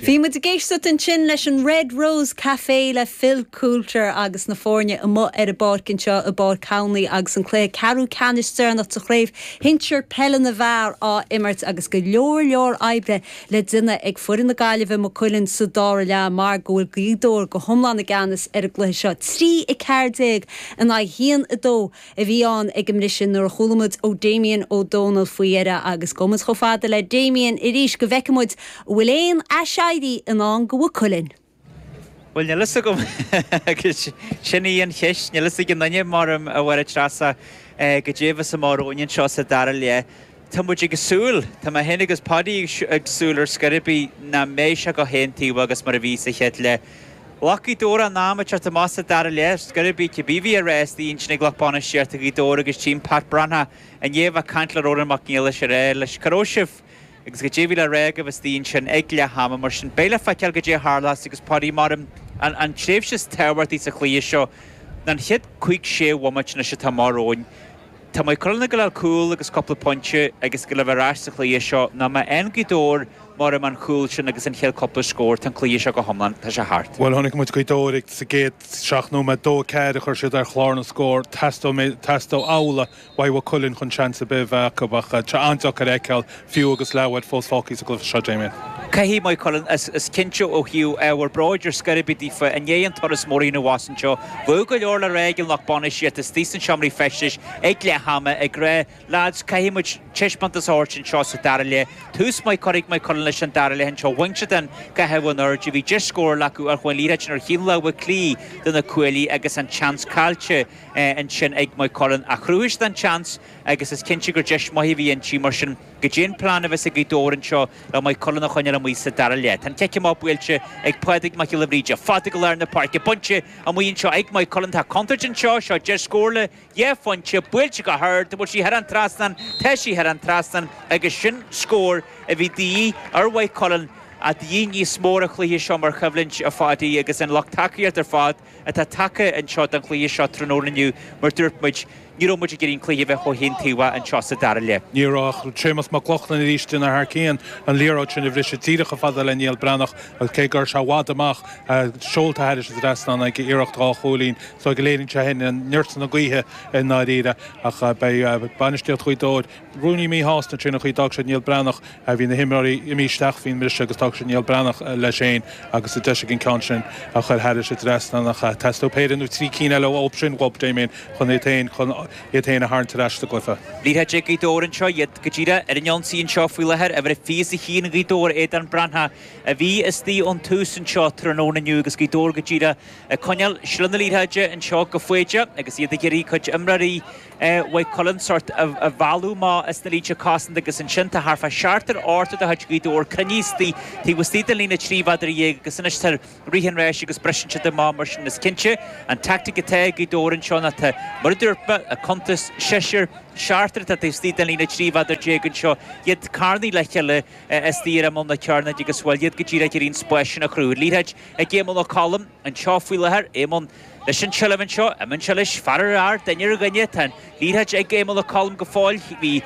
Bhí muid ag éisteacht ansin leis an Red Rose Café le Phil Coulter agus na foirne amuigh ar an bpáirc anseo i bPáirc Thamhnaí agus an cluiche ceathrú ceannais deireanach de chraobh shinsir peile na bhfear á imirt agus go leor leor oibre le déanamh ag foireann na Gaillimhe Maigh Cuilinn sa dara leath mar go bhfuil Gaoth Dobhair go hiomlán i gceannas ar an gcluiche seo, 3 14 in aghaidh 1 2. a bhí ann ag an mbriseadh nuair a chuala muid ó Damien Ó Dónaill faoi dheireadh agus gabhfaidh muid chomh fada le Damien arís go bhfeicfidh muid an bhfuil aon aiséirí i ndán do Mhaigh Cuilinn. Bhuel, níl a fhios agam agus sin í an cheist, níl a fhios ag aon duine, mar a mbeidh a Threasa, go deimhin is amárach, anseo sa dara leath. Tá muid ag súil, tá mé féin agus Paddy ag súil ar scor ar bith nach mbeidh sé chomh haontaobhach agus mar a bhí sa chéad leath. Ghlac Gaoth Dobhair a n-am ag teacht amach sa dara leath ar scor ar bith. Cibé a bhí á rá istigh ansin ag lucht bainistíochta Ghaoth Dobhair agus Tim, b'fhéidir, ba bhreá an ní a bheith ag caint le Rónán Mac Niallais a rá leis, cár raibh sibh agus goidé a bhí le rá agaibh istigh ansin ag leath ama. Mar sin beidh le feiceáil goidé a tharlas agus b'fhéidir mar an tréimhse is tábhachtaí sa chluiche seo ná an chéad cúig sé bhomaite anois atá amach romhainn. Tá Maigh Cuilinn ag gabháil a fháil cúl agus cúpla pointe agus go mbeidh siad ar ais sa chluiche seo nó má fhaigheann Gaoth Dobhair mar a dúirt mé an cúl sin agus an chéad cúpla scór. Tá an cluiche seo go hiomlán. Tá sé thart. Bhuel, chonaic muid Gaoth Dobhair sa gcéad seacht nóiméad, dó a ceathair a chuir siad ar chlár na scór. Teastóidh mé, teastóidh amhlaidh ó Mhaigh Cuilinn chun seans ar bith a bheith acu ach tá sé an-deacair a fheiceáil Fiú agus leathuair fós fágthaí sa gcluiche seo, Damien. Caithfidh Maigh Cuilinn, cinnte ó thaobh ábhar bróid ar scor ar bith daofa, i ndiaidh an turas mór a rinne siad anuas anseo. Bheadh go leor le rá ag an lucht bainistíochta istigh sna seomraí feistis ag leath ama ag rá, 'Lads, caithfidh muid taispeántas a thabhairt anseo sa dara leath. Tús maith curtha ag Maigh Cuilinn leis an dara leath anseo. Bhain siad an caitheamh in airde, bhí deis scórála acu ach chuaigh an liathróid ar thaobh na láimhe clé de na cuaillí agus an seans caillte ansin ag Maigh Cuilinn. Ach chruthaigh siad an seans. agus is cinnte gur deis mhaith a bhí inti, mar sin, goidé an plean a bheas ag Gaoth Dobhair anseo le Maigh Cuilinn a choinneáil amuigh sa dara leath. Tá an cic amach buailte ag Pádraig Mac Giolla Bhríde, fada go lár na páirce, bainte amuigh anseo ag Maigh Cuilinn, tá contúirt anseo, seo deis scórála dhá phointe, buailte go hard, an bhfuil sí thar an trasnán, tá sí thar an trasnán agus sin scór a bhí de dhíth ar Mhaigh Cuilinn, ach de dhíth níos mó ar an chluiche seo mar choimhlint ar fad, agus an lucht tacaíochta ar fad. atá tagtha anseo don chluiche seo tráthnóna inniu mar dúirt muid, ní raibh muid ag iarraidh an cluiche a bheith chomh haontaobhach anseo sa dara leath. Ní raibh ach Séamus Mac Lochlainn arís déanamh thar cionn, an liathróid sin a bhriseadh díreach chomh fada le Niall Breathnach agus cé go raibh sé i bhfad amach, seolta thar an trasnán aige, iarracht dhá chúilín. So léiríonn sé sin neart na gaoithe i ndáiríre ach beidh bainistíocht Ghaoth Dobhair, Rúnaí Míshásta, faoin gcaoi ar fhág siad Niall Breathnach, bhí na himreoirí imithe isteach faoin mbriseadh agus d'fhág siad Niall Breathnach leis fhéin agus an deis ag an ceann sin a chuir thairis trasna. Teastóidh péire nó trí cinn eile ó sin uathu Damien chun iad fhéin chun iad fhéin a tharraingt ar ais sa gcluiche. Gaoth Dobhair anseo iad go díreadh ar an ionsaí anseo faoi láthair uimhir a fiche ag Gaoth Dobhair Aodán Breathnach a bhí istigh ón tús anseo tráthnóna inniu agus Gaoth Dobhair go díreadh ag coinneáil seilbh na liathráide anseo go fóill agus iad ag iarraidh a chur ar imreoirí Mhaigh Cuilinn sórt a mhealladh amach as na línte cosanta agus ansin tá thart fá seachtar ochtar de chuid Ghaoth Dobhair cruinnithe istigh taobh istigh den líne trí mhéadar dhéag agus anois tá rith an ráis leo agus briseann siad amach mar sin is cinnte an tactic atá ag Gaoth Dobhair anseo ná tá mar a dúirt mé ag cuntas seisear seachtar atá taobh istigh den líne trí mhéadar déag anseo iad carnaithe le chéile istigh ar imeall na cearnóige agus bhuel iad go díreach ar aon spásanna a chruthú. Liathróid ag Éamonn Ó Colla anseo faoi láthair. Éamonn, Leis an tseilbh anseo, imíonn sé leis. Fear ar fhear, duine ar dhuine, tá an liathróid ag Éamonn Ó Colla go fóill. Bhí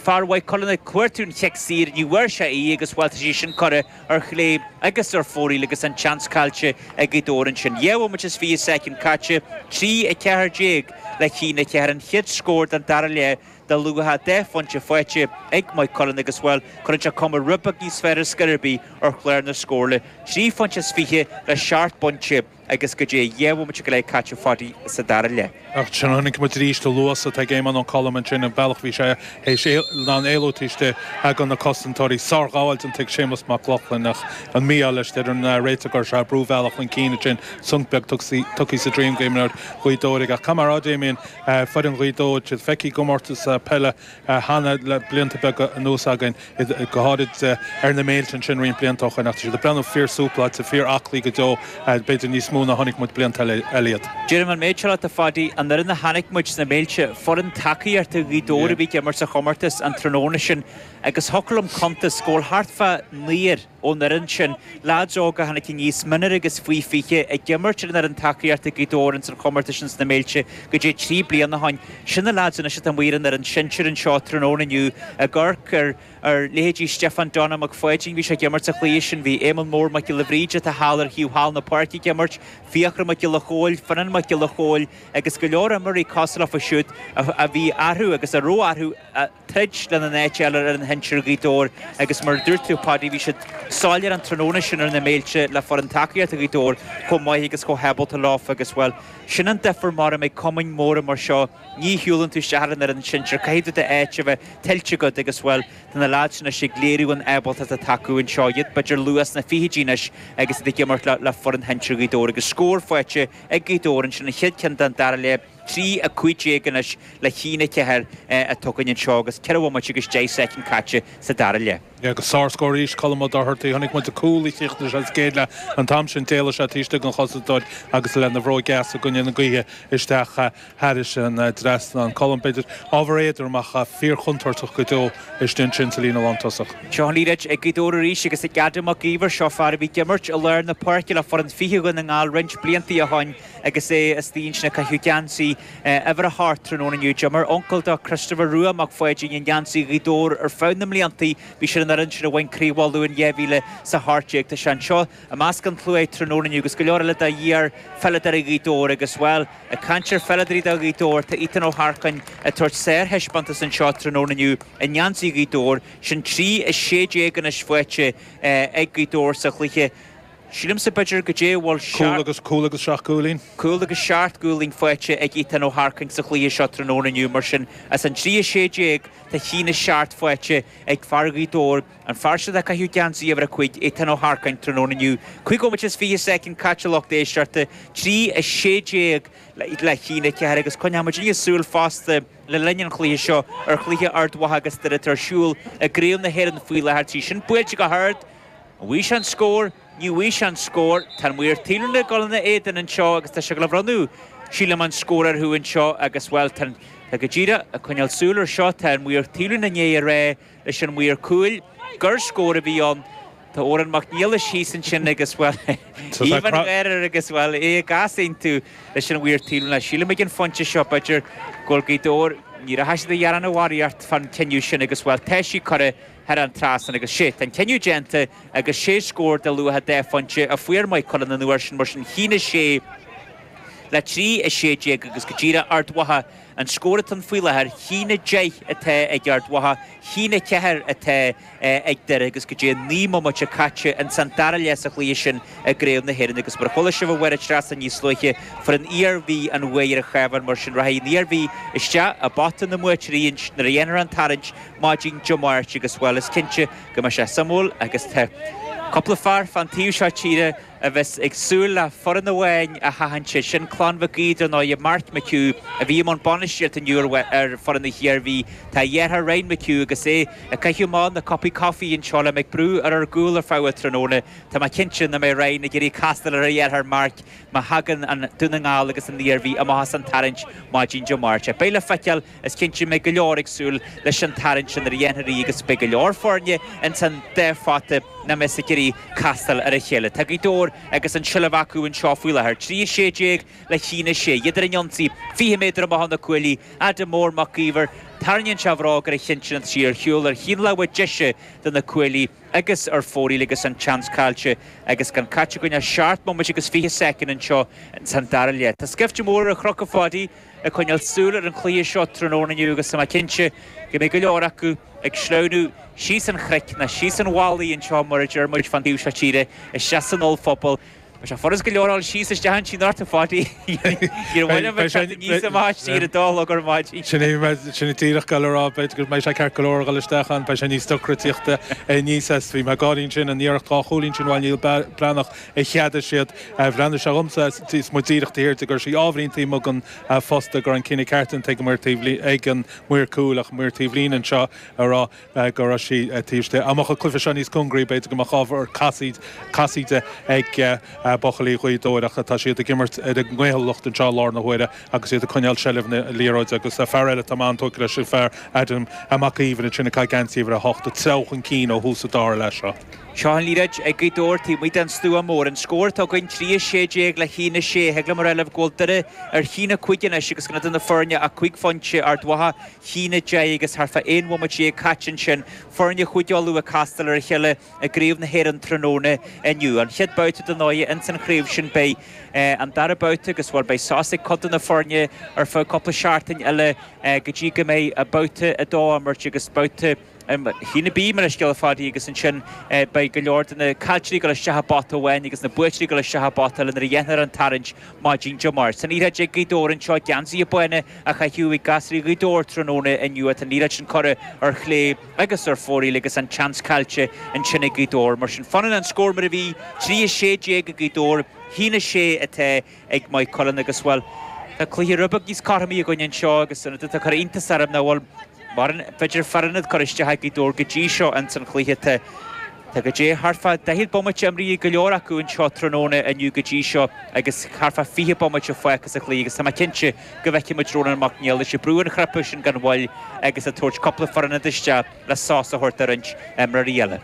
fear Mhaigh Cuilinn ag cuartú an chic saor, ní bhfuair sé í agus, bhuel, tá sí sin curtha ar chlé agus ar fóraoil agus an tseans caillte ag Gaoth Dobhair ansin. Dhá bhomaite is fiche soicind caite, 3, 14 le ceann, 4 an chéad scór den dara leath. De luach dhá phointe faighte ag Maigh Cuilinn agus Bhuel cuireann sé cuma rud beag níos fearr ar scor ar bith ar chlár na scór, trí phointe is fiche le seacht bpointe agus go dtí dhá bhomaite go leith caite ar fad sa dara leath. Ach chonaic muid arís an luas atá ag Éamonn Ó Colla ansin, an bealach a bhí sé sin in ann éalú taobh istigh de na cosantóirí. Sárghabháil déanta ag Séamus Mac Lochlainn ach an mí-ádh leis deir an réiteoir gur, brú bhealach chun cinn ansin, sonc beag tugtha sa droim d'imreoir Ghaoth Dobhair aige. Ach cad mar atá, Damien, Foireann Ghaoth Dobhair, tá siad feicthe i gcomórtas peile cheana le blianta beaga anuas againn, go háirid ar na Méilte ansin roinnt blianta ó shoin, ach tá siad ag breathnú fíor-súpláilte, fíor-aclaí go deo, b'fhéidir níos mó ná chonaic muid blianta eile iad. Deirim an méid seo leat a Pháidí, an fhoireann a chonaic muid sna Méilte, foireann tacaíochta Ghaoth Dobhair a bhí ag imirt sa chomórtas an tráthnóna sin agus thiocfadh liom cuntas go bhfuil thart fá naonúr ón fhoireann sin, leaids óga a tháinig aníos minor agus faoi 20 ag imirt ar an fhoireann tacaíochta ag Gaoth Dobhair ins an chomórtas sin sna Méilte go dtí trí bliana ó shin. Sin na leaids anois atá amuigh ar an fhoireann sinsir anseo tráthnóna inniu ag amharc ar ar leithéidí Stiofán Donnchadh Mac Pháidín, bhí sé ag imirt sa chluiche sin, bhí Éamonn Mór Mac Giolla Bhríde atá thall ar thaobh thall na páirce ag imirt, Fiachra Mac Giolla Chomhaill, Fionnán Mac Giolla Chomhaill agus go leor imreoirí cosúil leofa siúd a bhí arthu agus a raibh arthu a troid lena n-áit eile ar an shinsir Ghaoth Dobhair agus mar a dúirt tú Pháidí bhí sé soiléir an tráthnóna sin ar na Méilte le foireann tacaíochta Ghaoth Dobhair chomh maith agus chomh hábalta leofa agus bhuel sin an difear nuair a bíonn cumainn móra mar seo ní shiúlann tú isteach ar an fhoireann sinsir caithfidh tú d'áit a bheith tuillte agat agus bhuel tá na lads sin anois ag léiriú an ábaltacht atá acu anseo iad b'fhéidir ar luath sna fichidí anois agus iad ag imirt le foireann shinsir Ghaoth Dobhair agus scór faighte ag Gaoth Dobhair ansin an chéad ceann den dara leath. trí a cúig déag anois le haon a ceathair atá againn anseo agus ceithre bhomaite agus deich soicind caite sa dara leath. Agus sárscór arís Colm Ó Dochartaigh, chonaic muid an cúl a chríochnaigh sé sa gcéad leath an t-am sin, d'éalaigh sé taobh istigh den chosantóir agus lena bhróig dheas i gcoinne na gaoithe isteach thairis an trasnán. Colm, b'fhéidir, ábhar éadrom ach fíorchontúirteach go deo istigh ansin sa líne lántosach. Seo an liathróid ag Gaoth Dobhair arís agus ag Adam Mac Íomhair, seo fear a bhí ag imirt i lár na páirce le foireann faoi fiche Dhún na nGall roinnt blianta ó shin. Agus é istigh ansin ag caitheamh geansaí uimhir a hocht tráthnóna inniu, d'imir uncail dó, Christopher Rua Mac Pháidín, i ngeansaí Ghaoth Dobhair ar feadh na mblianta. Bhí sé ar an fhoireann sin a bhain Craobh Uladh in 2018. Tá sé anseo i measc an tslua tráthnóna inniu agus go leor eile de iar-pheileadóirí Ghaoth Dobhair agus, bhuel, ag caint ar pheileadóirí do Ghaoth Dobhair, tá Ethan Ó hEarcáin ag tabhairt sárthaispeántas anseo tráthnóna inniu i ngeansaí Ghaoth Dobhair. Sin 3-16 anois faighte ag Gaoth Dobhair sa chluiche. Sílimse b'fhéidir go dté a bhfuil cúl is seacht. agus cúl agus seacht gcúilín. Cúl agus seacht gcúilín faighte ag Ethan Ó hEarcáin sa chluiche seo tráthnóna inniu mar sin as an trí a sé déag tá a haon a seacht faighte ag fear Ghaoth Dobhair, an fear siúd ag caitheamh geansaí uimhir a cúig, Ethan Ó hEarcáin, tráthnóna inniu. Cúig bhomaite is fiche soicind caite lucht éisteachta, trí a sé déag le haon a ceathair agus coinneoidh muidinne súil fosta le linn an chluiche seo ar chluiche Ard Mhacha agus Doire atá ar siúl i gCraobh na hÉireann faoi láthair tá sí sin buailte go hard! An bhfaighidh sé an scór? Ní bhfaighidh sé an scór. Tá an maor taobhlíne ag dul ina éadan anseo agus tá sé ag dul a bhronnadh, sílim, an scór orthu anseo agus, bhuel, tá an, tá go díreach, ag coinneáil súil ar seo, tá an maor taobhlíne i ndiaidh a rá leis an maor cúil gur scór a bhí ann. Tá Odhrán Mac Niallais thíos ansin agus, bhuel, aoibh an gháire agus, bhuel, é ag easaontú leis an mhaor taobhlíne, sílim, ag an phointe seo, b'fhéidir go bhfuil Gaoth Dobhair, ní rachaidh siad a ghearán barraíocht fán chinneadh sin agus, bhuel, tá sí curtha. thar an trasnán agus siúd an cinneadh déanta agus sé scór de luach dhá phointe a fuair Maigh Cuilinn an uair sin mar sin 1 6 le 3 16 agus go díreach Ard Mhacha an scór atá ann faoi láthair 1 10 atá ag Ard Mhacha 1 4 atá ag Doire agus go dtí 9 mbomaite caite ins an dara leath sa chluiche sin i gcraobh na hÉireann agus mar chuala sibh ó Mháire Treasa níos luaithe fuair an Iarmhí an bhuaidh ar an Chabhán mar sin rachaidh an Iarmhí isteach i bpota na mbuaiteoirí nuair a dhéanfar an tarraingt maidin Dé Máirt agus, bhuel, is cinnte go mbeidh sé suimiúil agus tá cúpla fear fán taobh seo tíre a bheas ag súil le foireann amháin a sheachaint, sé sin Clann Mhic Aodha, dar ndóigh, Mark McHugh a bhí i mbun bainistíocht inniu ar fhoireann na hIarmhí, tá a dheartháir Ryan McHugh agus é ag caitheamh amach na cupaí coffee anseo le mé ag brú ar ár gcúl ar feadh an tráthnóna, tá mé cinnte nach mbeidh Ryan ag iarraidh castáil ar a dheartháir Mark má thagann an Dún na nGall agus an Iarmhí amach as an tarraingt maidin Dé Máirt. Beidh le feiceáil. Is cinnte go mbeidh go leor ag súil leis an tarraingt sin nuair a dhéanfar í agus beidh go leor foirne ins an dá phota nach mbeidh ag iarraidh castáil ar a chéile. Tá Gaoth Dobhair agus an tseilbh acu anseo faoi láthair, 3, 16 le cheann a sé. Iad ar an ionsaí, 20 méadar amach ó na cuaillí, Adam Mór Mac Íomhair. Tarraingíonn sé a bhróg ar an chionn sin, tá sí ar shiúl ar thaobh na láimhe deise de na cuaillí agus ar fóraoil agus an tseans caillte agus gan caite againn ach seacht mbomaite agus 20 soicind anseo ins an dara leath. Tá scaifte mór ar an chnoc, a Pháidí. ag coinneáil súil ar an chluiche seo tráthnóna inniu agus tá mé cinnte go mbeidh go leor acu ag sleamhnú síos an chnoic nó síos an mhalaidh anseo mar a deir muid fán taobh seo tíre isteach san ollphuball. Beidh sé furast go leor dul síos isteach ansin ort, a Pháidí. Níor mhaith liom a bheith teacht aníos an mhalaidh sin ar a dó a chlog ar maidin. Sin é, sin é díreach, ag gabháil a rá. B'fhéidir go mbeidh sé ceart go leor a dhul isteach ann, beidh sé níos deacra tíocht aníos as. Bhí mé ag gáirí ansin, an iarracht dhá chúilín sin, bhuail Niall Breathnach, a cheadaigh siad. Bhreathnaigh sé dhomsa is mé díreach taobh thiar de go raibh sí ábhairín taobh amuigh den phosta go raibh an cinneadh ceart déanta ag an maor taobh ag an maor cúil ach an maor taobhlíne anseo a rá go raibh sí taobh istigh. Dá mbeadh an cluiche seo níos cóngaraí b'fhéidir go mbeadh ábhar casaoid casaoide ag buachaillí Ghaoth Dobhair ach tá siad ag imirt ar a gcaoithiúlacht anseo i láthair na huaire agus iad ag coinneáil seilbh na liathróide agus fear eile atá mé an-tógtha leis an fear Adam Mac Íomhair ansin ag caitheamh geansaí uimhir a hocht ag treabhadh chun cinn ó thús an dara leath seo. Seo an liathróid ag Gaoth Dobhair taobh amuigh den Stua Mór. An scór atá againn, 3:16 le cheann a 6. Thig liom a rá libh go bhfuil Doire ar cheann a cúig anois agus gan idir na foirne ach cúig phointe Ard Mhacha, cheann a deich agus thart fá aon bhomaite dhéag caite ansin. Foirne Chúige Uladh ag castáil ar a chéile i gCraobh na hÉireann tráthnóna inniu. An chéad babhta den oie ins an chraobh sin beidh an dara babhta agus, bhuel, beidh sos ag cuid de na foirne ar feadh cúpla seachtain eile go dtí go mbeidh babhta a dó á imirt agus babhta Cheann a B, mo leithscéal, a Pháidí agus ansin beidh go leor de na caillteoirí ag dul isteach i bpota amháin agus na buaiteoirí ag dul isteach i bpota eile nuair a dhéanfar an tarraingt maidin Dé Máirt. Tá an liathróid ag Gaoth Dobhair anseo geansaithe bána a chaitheamh ag gasraí Ghaoth Dobhair tráthnóna inniu tá an liathróid sin curtha ar chlé agus ar fóraoil agus an tseans caillte ansin ag Gaoth Dobhair. Mar sin fanann an scór mar a bhí, 3-16 ag Gaoth Dobhair, cheann a 6 atá ag Maigh Cuilinn agus, bhuel, tá cluiche rud beag níos cothromaí againn anseo agus an rud atá ag cur iontas orm nach bhfuil mórán, b'fhéidir, fear ionaid curtha isteach ag Gaoth Dobhair go dtí seo ins an chluiche. Tá, tá goidé thart fá daichead bomaite imrithe ag go leor acu anseo tráthnóna inniu go dtí seo agus thart fá fiche bomaite fágtha sa chluiche agus tá mé cinnte go bhfeicfidh muid Rónán Mac Niallais ag brú an chnaipe sin gan mhoill agus ag tabhairt cúpla fear ionaid isteach le sos a thabhairt do roinnt imreoirí eile.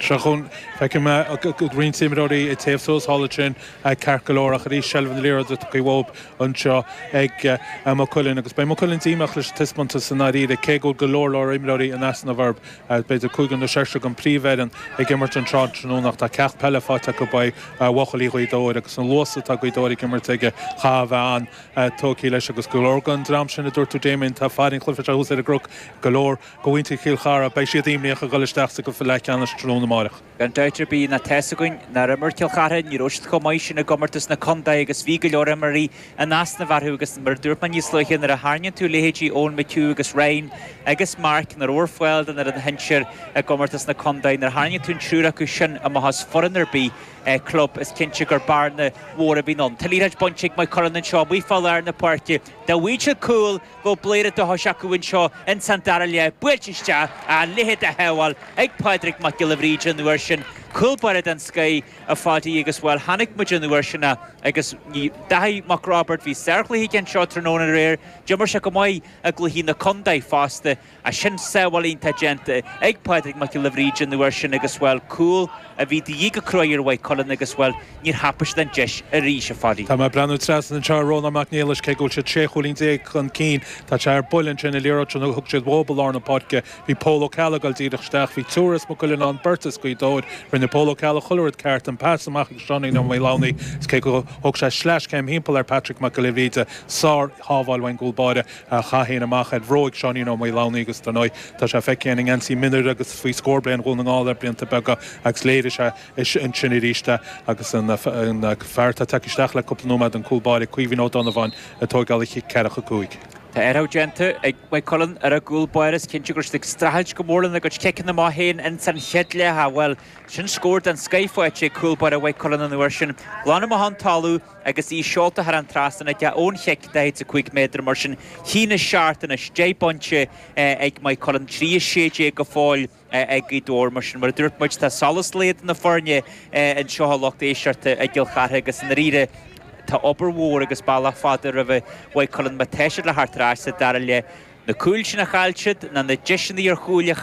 Seo chugainn, feicim roinnt imreoirí ag téamh suas thall ansin, ceart go leor, ach arís seilbh an liathróid atá faoi bhabhta anseo ag Maigh Cuilinn agus beidh Maigh Cuilinn díomách leis an taispeántas i ndáiríre, cé go bhfuil go leor leor imreoirí in easnamh orthu, b'fhéidir cúigear nó seisear den phríomhfhoireann ag imirt an tráthnóna ach tá ceacht peile faighte acu uaidh bhuachaillí Ghaoth Dobhair agus an luas atá ag Gaoth Dobhair ag imirt aige, chaithfeá a bheith an-tógtha leis agus go leor den dream sin a dúirt tú, Damien, tá fear an chluiche seo thuas ar an gcnoc, go leor de mhuintir Chill Chartha, beidh siad imníoch a dhul isteach sa gcluiche leathcheannais tráthnóna amárach. Gan dabht ar bith ná tá's againn nár imir Cill Chartha, ní raibh siad chomh maith sin i gcomórtas na contae agus bhí go leor imreoirí in easnamh orthu agus mar a dúirt mé níos luaithe nuair a tharraingíonn tú leithéidí Eoin McHugh agus Ryan agus Mark nach raibh ar fáil don fhoireann shinsir i gcomórtas na contae nuair a tharraingíonn tú an triúr acu sin amach as foireann ar bith, club, is cinnte gur bearna mhór a bhíonn ann. Tá liathróid bainte ag Maigh Cuilinn anseo amuigh fá lár na páirce. Dá bhfaigheadh siad cúl, go bhfuil péire de dhíth orthu anseo insan dara leath buailte isteach a leithéid de shábháil ag Pádraig Mac Giolla Bhríde an uair sin cúl báire den scoith a Phádí agus bhuel chonaic muid an uair sin agus ní Daithí Mac Roibeaird bhí sárchluiche aige anseo tráthnóna aréir d'imir sé go maith i gcluichí na contae fosta a sin sábháil iontach déanta ag Pádraig Mac Giolla Bhríde an uair sin agus, bhuel, cúl a bhí de dhíth go cruaidh ar Mhaigh Cuilinn agus, bhuel, níor thapa siad an deis arís, a Phádí. Tá mé ag breathnú trasna anseo ar Rónán Mac Niallais, cé go bhfuil siad 16 chúilín chun cinn, tá sé ar buile ansin an liathróid sin a thug siad dhóibh i lár na páirce. Bhí Pól Ó Ceallaigh ag dul díreach isteach, bhí triúr as Maigh Cuilinn ann, beirt as Gaoth Dobhair. Rinne Pól Ó Ceallaigh chuile rud ceart, an pas amach ag Seáinín Ó Maolánaí agus cé gur thóg sé sleaschéim timpeall ar Patrick Mac Giolla Bhríde, sár-shábháil ón gcúl báire. a thóg sé amach de bhróig Sheáinín Ó Maolánaí agus dar ndóigh tá sé feicthe i ngeansaí mionúir agus faoi scór bliain Dhún na nGall le blianta beaga agus léirigh sé é ansin arís é agus an fear atá tagtha isteach le cúpla nóiméad, an cúl báire Caoimhín Ó Donnabháin, ag tóigeáil an chic ceathracha cúig. Tá athrú déanta ag Maigh Cuilinn ar a gcúl báire. Is cinnte go raibh siad ag streachailt go mór lena gcuid ciceanna amach ins an chéad leath. Bhuel, sin scór den scoith faighte ag cúl báire Mhaigh Cuilinn an uair sin. Glan amach ón talamh. Agus í seolta thar an trasnán aige ón chic 45 méadar mar sin, cinn na seachtaine 10 bpointe ag Maigh Cuilinn, 3 16 go fóill ag Gaoth Dobhair. Mar sin, mar a dúirt muid, tá solas lae do na foirne anseo, a lucht éisteachta, i gCill Chartha agus i ndáiríre tá obair mhór agus bealach fada roimh Mhaigh Cuilinn má tá siad le theacht ar ais sa dara leath. Na cúil sin a chaill siad, na na deiseanna ar chúil a.